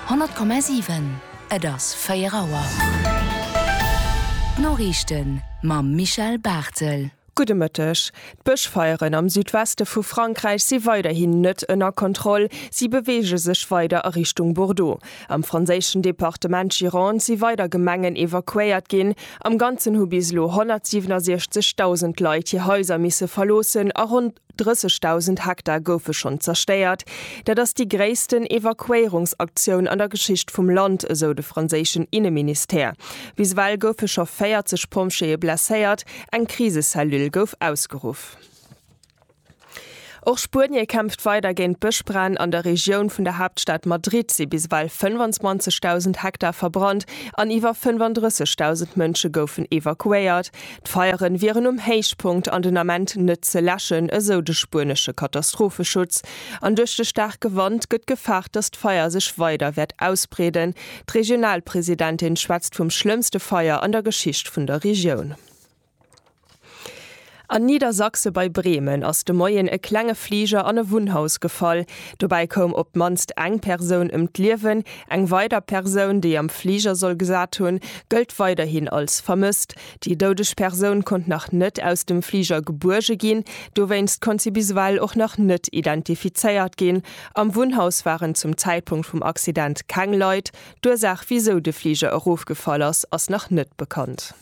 100,7, Et ass 4 Auer. D'Noriichten mam Michel Barthel. Gudde Mëtteg. D'Bëschfeieren am Südweste vu Frankräich si weiderhin net ënner Kontroll. Si beweege sech weider a Richtung Bordeaux. Am franséischen Departement Gironde si weider Gemengen evakuéiert ginn. Am Ganzen hu bis elo 167.000 Leit hir Haiser misse verloossen a ronn. 30.000 Hektar goufe schonn zerstéiert. Dat ass déi gréissten Evakuéierungsaktioun an der Geschicht vum Land, esou de franséischen Inneministère. Bis ewell goufe scho 40 Pompjeeë blesséiert, eng Krisecellule gouf ausgeruff. Och Spuenie kämpft weider géint d'Bëschbränn. An der Regioun vun der Haaptstad Madrid si bis ewell 25.000 Hektar verbrannt an iwwer 35.000 Mënsche goufen evakuéiert. D'Feieren wieren um Héichpunkt an den Ament net ze läschen, esou de spuenesche Katastropheschutz. An duerch de staarke Wand gëtt gefaart, datt d'Feier sech weider wäert ausbreeden. D'Regionalpresidentin schwätzt vum schlëmmste Feier an der Geschicht vun der Regioun. An Niedersachse bei Bremen ass de Moien e klenge Fliger an e Wunnhaus gefall. Dobäi koum op d'mannst eng Persoun ëm d'Liewen. Eng weider Persoun, déi am Fliger soll gesat hunn, gëllt weiderhin als vermësst. Déi doudeg Persoun konnt nach net aus dem Fliger gebuerge ginn. Dowéinst konnt si bis ewell och nach net identifizéiert ginn. Am Wunnhaus waren zum Zäitpunkt vum Accident keng Leit. D'Ursaach, wisou de Fliger erofgefall ass, ass nach net bekannt.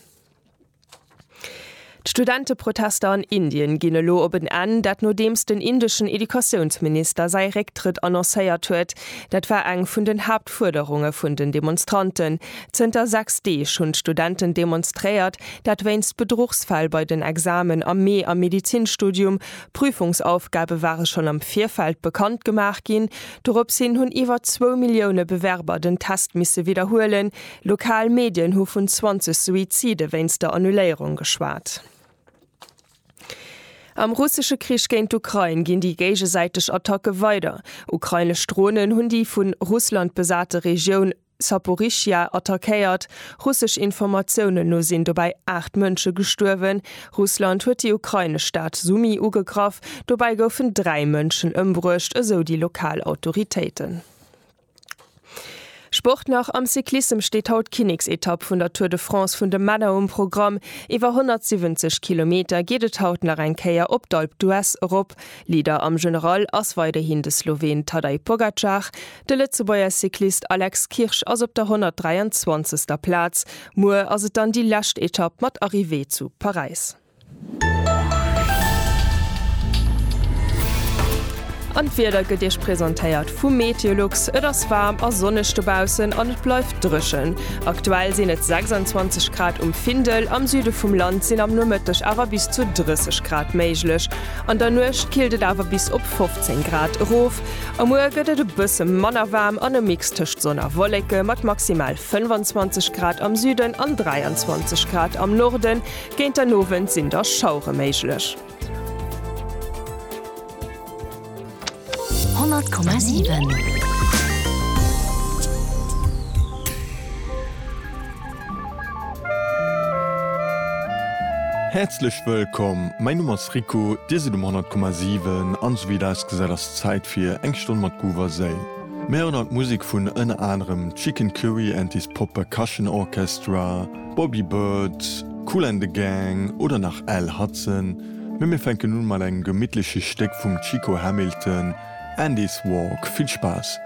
D'Studenteprotester an Indien ginn elo op en Enn, dat nodeems den indeschen Educatiounsminister säi Récktrëtt annoncéiert huet. Dat war eng vun den Haaptfuerderunge vun den Demonstranten. Zënter 6 Deeg hunn d'Studenten demonstréiert, dat wéinst Bedruchsfäll bei den Examen am Mee am Medizinstudium. Prüfungsaufgabe ware schonn am Virfeld bekannt gemaach ginn. Doropshin hunn iwwer zwou Millioune Bewerber den Test misse widderhuelen, Lokal Medien hu vun 20 Suizide wéinst der Annuléierung geschwat. Am russesche Krich géint d'Ukrain ginn déi géigesäiteg Attacke weider. Ukrainesch Dronen hunn déi vu Russland besate Regioun Saporischschja attackéiert. Russesch Informatiounen no sinn dobäi 8 Mënsche gestuerwen. Russland huet déi ukrainesch Stad Sumy ugegraff. Dobäi goufen dräi Mënschen ëmbruecht, esou déi lokal Autoritéiten. Sport nach, Am Cyclissem steet haut d'Kinneksetapp vun der Tour de France vun de Männer um Programm. Iwwer 170 Kilometer geet et haut nach eng Kéier op d'Alpe d'Huez erop. Leader am General ass weiderhin de Sloween Tadej Pogacar. De Lëtzebuerger Cyclist Alex Kirsch ass op der 123. Plaz. Muer ass et dann déi lescht Etapp mat Arrivée zu Paräis. An d'Wieder gëtt Iech presentéiert vum Meteolux. Et ass waarm a sonneg dobaussen an et bleift dréchen. Aktuell sinn et 26 Grad um Findel. Am Süde vum Land sinn am Nomëtteg awer bis zu 30 Grad méiglech. An der Nuecht killt et awer bis op 15 Grad erof. A muer gëtt et e bësse manner waarm an e Mix tëscht Sonn a Wolleke mat maximal 25 Grad am Süden an 23 Grad am Norden. Géint den Owend sinn da Schauere méiglech. 100,7. Häerzlech wëllkomm, mäi Numm ass Rico, Dir sidd um 100,7 an esou wéi et ausgesäit ass Zäit fir eng Stonn mat Groove a Séil. Mir héieren haut Musek vun ënner anerem Chicken Curry and his Pop Percussion Orchestra, Bobby Bird, Kool and the Gang oder nach Al Hudson, mee mir fänken un mat engem gemittleche Stéck vum Chico Hamilton, Andy's Walk. Vill Spaass!